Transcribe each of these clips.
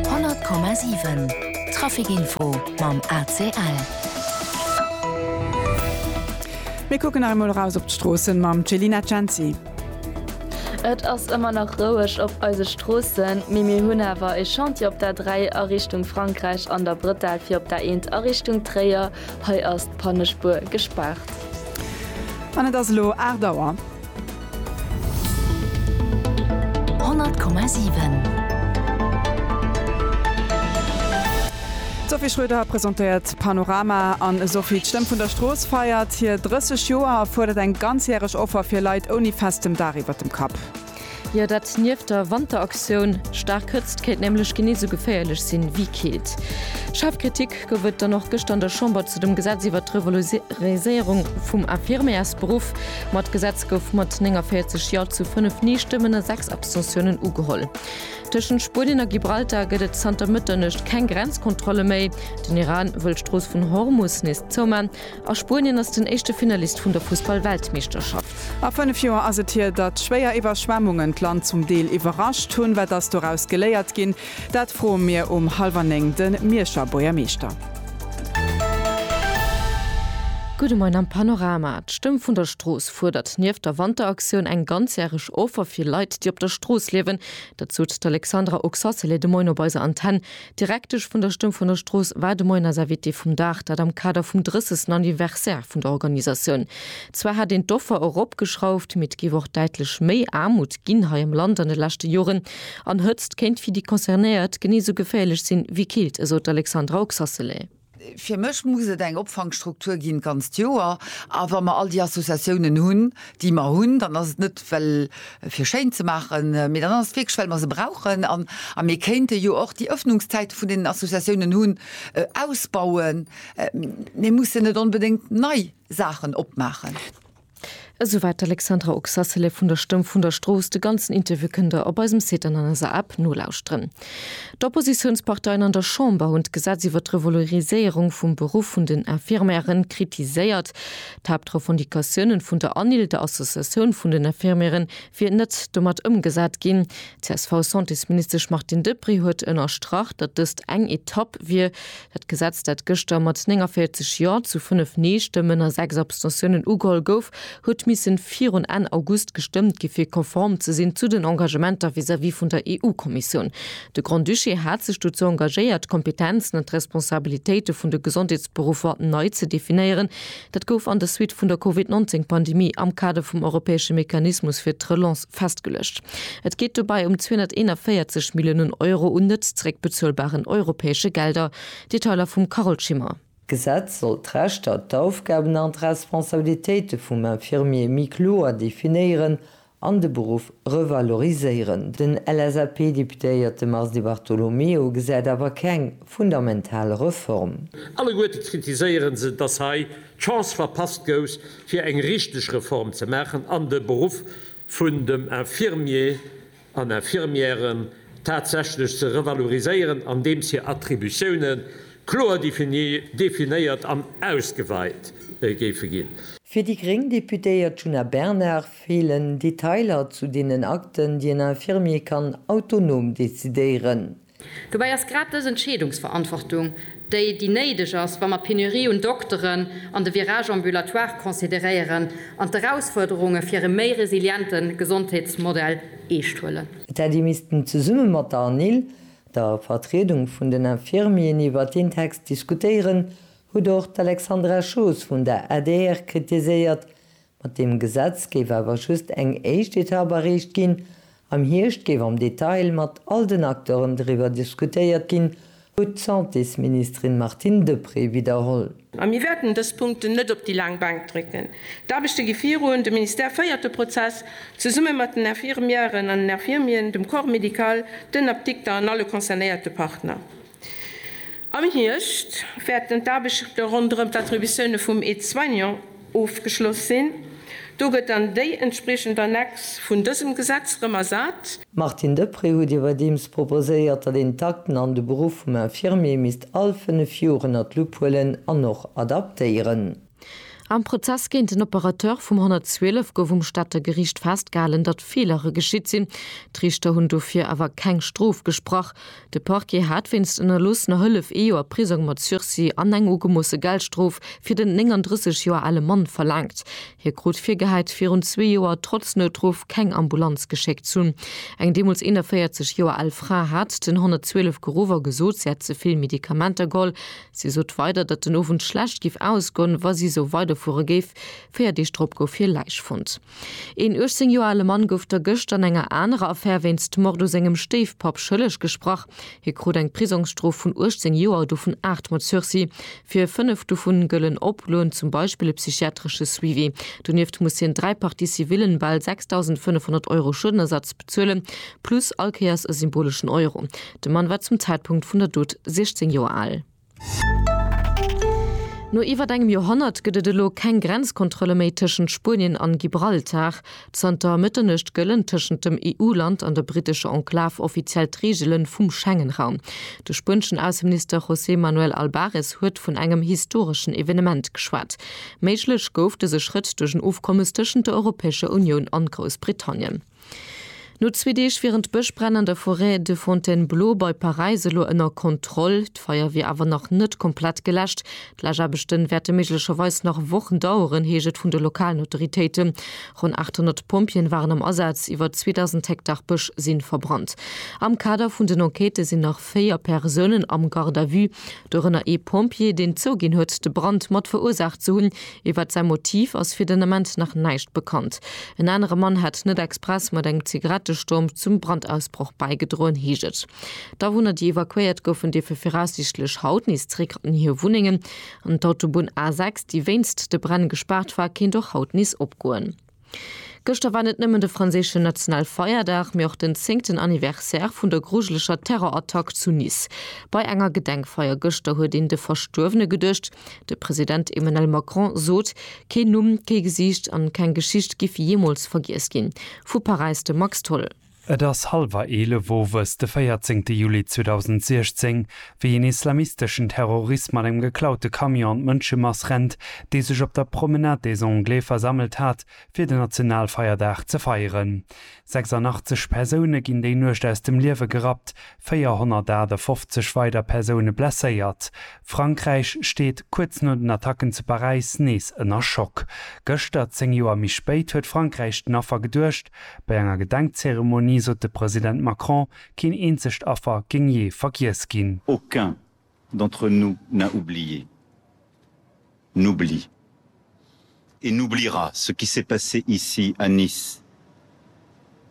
100,7 Trafic Info mam ACL. Mir kucken nach emol eraus op d'Stroossen mam Celina Censi. Et ass ëmmer nach roueg op eise Stroossen, mee mir hunn awer e Chantier op der 3 a Richtung Frankräich an der Brëttel fir op der 1 a Richtung Tréier. Hei ass d'Pannespuer gespaart. An et ass elo 8 Auer. 100,7. D'Sophie Schröder presentéiert d'Panorama an Sophie, d'Stëmm vun der Strooss feiert hir 30 Joer a fuerdert eng ganzjäreg Offer fir Leit ouni festem Daach iwwert dem Kapp. Jo, dat nieft der Wanteraktioun. Staark Hëtzt kéint nämlech genee sou geféierlech sinn wéi Keelt. Schaarf Kritik Gouf et dann och gëschter an der Chamber zu dem Gesetz iwwert d'Revaloriséierung vum Infirmièresberuff. Ma d'Gesetz gouf mat 49 Jo zu 5 Nee-Stëmmen a 6 Abstentiounen ugeholl. Tëschent Spuenien a Gibraltar gëtt et zanter Mëtternuecht keng Grenzkontrolle méi. Den Iran wëll d'Strooss vun Hormus nees zouman a Spuenien ass den éischte Finalist vun der Fussball-Weltmeeschterschaft. A 5 Joer ass et hier, datt schwéier Iwwerschwemmungen d'Land zum Deel iwwerrascht hunn. Wat ass doraus geléiert ginn? Dat froe mir um halwer néng de Mierscher Buergermeeschter. Gudde Moien am Panorama. D'Stëmm vun der Strooss fuerdert nieft der Wanteraktioun eng ganzjäreg Offer fir Leit, déi op der Strooss liewen. Dat sot d'Alexandra Oxacelay de Moien op eiser Antenn. D'Direktesch vun der Stëmm vun der Strooss war de Moien eis Invitée vum Dag, dat am Kader vum 30. Anniversaire vun der Organisatioun. Zwar hätt een d'Offer eropgeschrauft, mee et géif och däitlech méi Aarmut ginn hei am Land an de leschte Joren. An Hëtzt kéint fir déi Concernéiert genee sou geféierlech sinn, wéi Kilt, esou d'Alexandra Oxacelay. Fir mech muss et eng Opfangstruktur ginn d'ganzt Joer. A wa mer all déi Associatiounen hunn, déi mer hunn, dann ass et net, well fir schéin ze maachen, mee dann ass et wierklech, well mer se brauchen. An mir kéinte jo och déi Ëffnungszäite vun deenen Associatiounen hunn ausbauen. Mir mussen net onbedéngt nei Saachen opmaachen. Esouwat d'Alexandra Oxacelef vun der Stëmm vun der Strooss. De ganzen Interview kënnt der op eisem Site an an eiser App nolauschteren. D'Oppositiounsparteien an der Chamber hunn d'Gesetz iwwert d'Revaloriséierung vum Beruff vun den Infirmièren kritiséiert. D'Haaptrevendicatiounen vun der ANIL, der Associatioun vun den Infirmièren, wier net domat ëmgesat ginn. D'CSV-Santésministesch Martine Deprez huet ënnerstrach, datt dëst eng Etapp wier, Dat Gesetz, dat gëschter mat 49 Jo zu 5 Nee-Stëmmen a 6 Abstentiounen ugeholl gouf, huet misse virun Enn August gestëmmt gi fir konform ze sinn zu den Engagementer vis-à-vis vun der EU-Kommissioun. De Grand-Duché hat sech dozou engagéiert, d'Kompetenzen an d'Responsabilitéite vun de Gesondheetsberuffer nei ze definéieren. Dat gouf an der Suite vun der Covid 19 Pandemie am Kader vum europäesche Mechanismus fir d'Relance festgeluecht. Et geet dobäi ëm 241 Milliounen Euro un net zeréckbezuelbaren europäesche Gelder. Detailer vum Carole Schimmer. D'Gesetz soll d'Rechter, d'Aufgaben an d'Responsabilitéite vum Infirmier méi kloer definéieren an de Beruff revaloriséieren. Den LSAP-Deputéierte Mars Di Bartolomeo gesäit awer keng fundamental Reform. Alleguerte kritiséiere se, datt hei d'Chance verpasst gouf, fir eng richteg Reform ze maachen an de Beruff vun dem Infirmier an Infirmière tatsächlech ze revaloriséieren, andeems hir Attributioune kloer definéiert an ausgeweit géife ginn. Fir déi gréng Deputéiert Djuna Bernard Feelen Detailer zu deenen Akten, déi en Infirmier kann autonom decidéieren? Dobäi ass grad dës Entscheedungsverantwortung déi, déi néideg ass, wa mer d'Penurie un Dokteren an de Virage ambulatoire consideréieren an d'Erausfuerderunge fir e méi resiliente Gesondheetsmodell eescht huelen. Et hätt ee missten zesumme mat der ANIL, der Vertriedung vun den Infirmieren, iwwer deen Text diskutéieren, huet och d'Alexandra Schoos vun der adr kritiséiert, Mat deem Gesetz géif awer just eng éischt Etapp erreecht ginn. Am Hierscht géif am Detail mat all den Acteuren driwwer diskutéiert ginn, huet d'Santésministerin Martine Deprez widderholl. A mir wäerten dës Punkten net op déi laang Bank drécken. D'Aarbechte gi virun. De Ministère féiert de Prozess zesumme mat den Infirmièren an den Infirmieren, dem Corps médical, den Apdikter an alle concernéierte Partner. Am Hierscht wäerten d'Aarbechte ronderëm d'Attributioune vum Aide-soignant ofgeschloss sinn. Do gëtt dann déi entspriechend Annex vun dësem Gesetz rëm ersat. Martine Deprez huet iwwerdeems proposéiert, datt een d'Akten an de Beruff vum Infirmier misst all fënnef Joer ënner d'Lupp huelen an och adaptéieren. Am Prozess géint den Operateur vum 112 gouf um Stater Geriicht festgehalen, datt Feelere geschitt sinn. D'Riichter hunn dofir awer keng Strof gesprach. De Parquet hat wéinst ënnerloossener Hëllef ee Joer Prisong mat Sursis an eng ugemoosse Geldstrof fir den 39 Joer ale Mann verlaangt. Hie krut virgehäit, virun zwee Joer trotz Noutruff keng Ambulanz geschéckt ze hunn. Eng deemools 41 Joer al Fra hat den 112 geruff a gesot, si hätt ze vill Medikamenter geholl. Si sot weider, datt den Owend schlecht géif ausgoen, wa si esou weiderfuere géif. Véier Deeg drop gouf hir Läich fonnt. Een 18 Joer ale Mann gouf der gëscht an enger anerer Affär wéinst Mord u sengem Stéifpapp schëlleg gesprach. Hie krut eng Prisongsstrof vun 18 Joer, dovun aacht mat Sursis. Fir fënnef dovun gëllen Oploen, zum Beispill e psychiatresche Suivi. Donieft muss hien dräi Parties civillen, bal 6.500 Euro Schuedenersatz, bezuelen, plus allkéiers e symboleschen Euro. De Mann war zum Zäitpunkt vun der Dot 16 Joer al. No iwwert engem Joerhonnert gëtt et elo keng Grenzkontrolle méi tëschent Spuenien an Gibraltar. Zanter Mëtternuecht gëllen tëschent dem EU-Land an der brittescher Enklav offiziell d'Reegele vum Schengen-Raum. De spuenschen Ausseminister José Manuel Albares huet vun engem historeschen Evenement geschwat. Méiglech gouf dëse Schrëtt duerch en Ofkommes tëschent der Europäescher Unioun an Groussbritannien. No zwee Deeg wieren d'Bëschbränn an der Forêt de Fontainebleau bei Paräis elo ënner Kontroll. D'Feier wier awer nach net komplett geläscht. D'Läschaarbechte wäerte méiglecherweis nach Wochen daueren, heescht et vun de lokalen Autoritéite. Ronn 800 Pompjeeën waren am Asaz, iwwer 2.000 Hektar Bësch si verbrannt. Am Kader vun den Enquêtë sinn nach véier Persounen am Garde à vue, dorënner ee Pompjee, deen zouginn huet, de Brand mat verursaacht ze hunn. Iwwert säi Motiv ass fir den Ament nach näischt bekannt. En anere Mann hätt net express mat engem Zigarettesturm zum Brandausbroch bäigedroen, heescht et. D'Awunner, déi evakuéiert goufen, dierfe viraussiichtlech haut nees zeréck an hir Wunnengen. An d'Autobunn A6, déi wéinst de Bränn gespaart war, kéint och haut nees opgoen. Gëschter war net nëmmen de franséischen Nationalfeierdag, mee och den zéngten Anniversaire vun der grujeleger Terrorattack zu Nice. Bei enger Gedenkfeier gëschter huet een de Verstuerwene geduecht. De President Emmanuel Macron sot, keen Numm, kee Gesiicht an keng Geschicht giff jeemools vergiess ginn. Vu Paräis de Max Tholl. Et ass hallwer 11 owes de 14 Juli 2016, wéi een islamisteschen Terrorist mat engem geklaute Camion an d'Mënschemass rennt, déi sech op der Promenade des Anglais versammelt hat, fir den Nationalfeierdag ze feieren. 86 Persoune ginn déi Nuecht aus dem Liewe gerappt, 458 weider Persoune blesséiert. Frankräich steet, kuerz no den Attacken zu Paräis, nees ënner Schock. Gëschter, 10 Joer méi spéit, huet Frankräich den Affer geduecht, Bei enger Gedenkzeremonie sot de President Macron, keen eenzegt Affer géing jee vergiess ginn. Aucun d'entre nous n'a oublié, n'oublie et n'oubliera ce qui s'est passé ici à Nice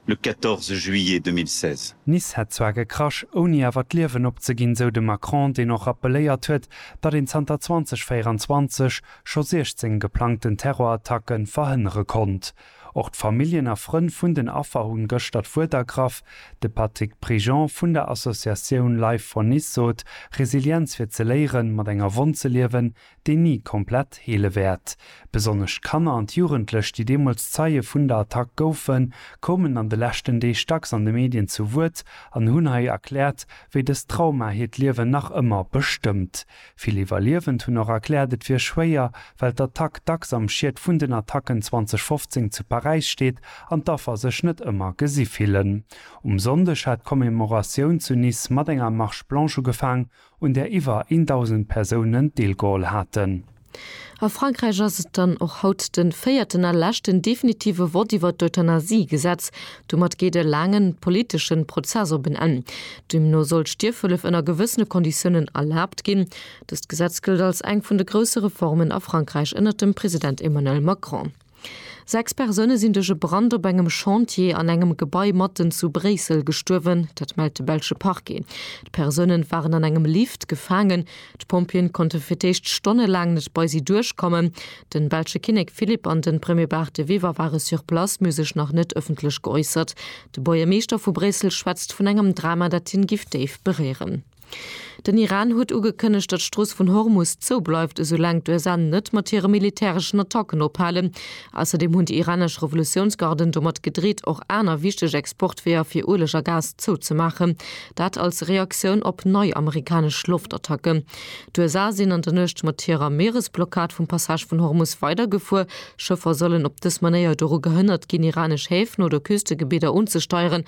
le 14 juillet 2016. Nice hätt zwar gekrasch, ouni awer d'Liewen opzeginn, sou de Macron, deen och rappeléiert huet, datt een zanter 2024 scho 16 geplangten Terrorattacke verhënnere konnt. Och d'Familljen a Frënn vun den Affer hunn gëschter d'Wuert ergraff. De Patrick Prigent vun der Associatioun Life for Nice sot, Resilienz fir ze léieren, mat enger Wonn ze liewen, déi ni komplett heele wäert. Besonnesch d'Kanner an d'Jugendlech, déi deemools Zeie vun der Attack goufen, koumen an de leschten Deeg dacks an de Medien zu Wuert an hunn hei erkläert, wéi dëst Trauma hiert Liewen nach ëmmer bestëmmt. Vill Iwwerliewend hunn och erkläert, et wier schwéier, well d'Attack dacks am Schiet vun den Attacken 2015 zu Paräis steet an d'Affer sech net ëmmer gesi fillen. Um Sonndeg hat d'Commemoratioun zu Nice mat enger Marche blanche ugefaang, un där iwwer een Dausend Persounen deelgeholl haten. A Frankräich ass et dann och haut de véierten a leschten definitive Vott iwwert d'Euthanasie-Gesetz. Domat geet e laangen politeschen Prozess op en Enn. Deemno soll d'Stierfhëllef ënner gewëssene Konditiounen erlaabt ginn. Dëst Gesetz gëllt als eng vun de grousse Reformen a Frankräich ënner dem President Emmanuel Macron. Sechs Persoune sinn duerch e Brand op engem Chantier an engem Gebai matten zu Bréissel gestuerwen. Dat mellt de belsche Parquet. D'Persoune waren an engem Lift gefaangen. D'Pompjeeën konnte fir d'éischt stonnelaang net bei si duerchkommen. De belsche Kinnek Philippe an de Premier Bart De Wever ware sur place, mee hu sech nach net ëffentlech geäussert. De Buergermeeschter vu Bréissel schwätzt vun engem Drama, dat hien giff déif beréieren. Den Iran huet ugekënnegt, datt d'Strooss vun Hormus zou bleift, esou laang d'USA net mat hire militäreschen Attacken ophalen. Ausserdeem hunn déi iranesch Revolutiounsgarden domat gedreet, och aner wichteg Exportweeër fir Ueleg a Gas zouzemaachen, dat als Reaktioun op nei amerikanesch Loftattacken. D'USA sinn an der Nuecht mat hirer Mieresblockad vum Passage vun Hormus weidergefuer. Schëffer sollen op dës Manéier doru gehënnert ginn, iranesch Häfen oder Küstegebidder unzesteieren.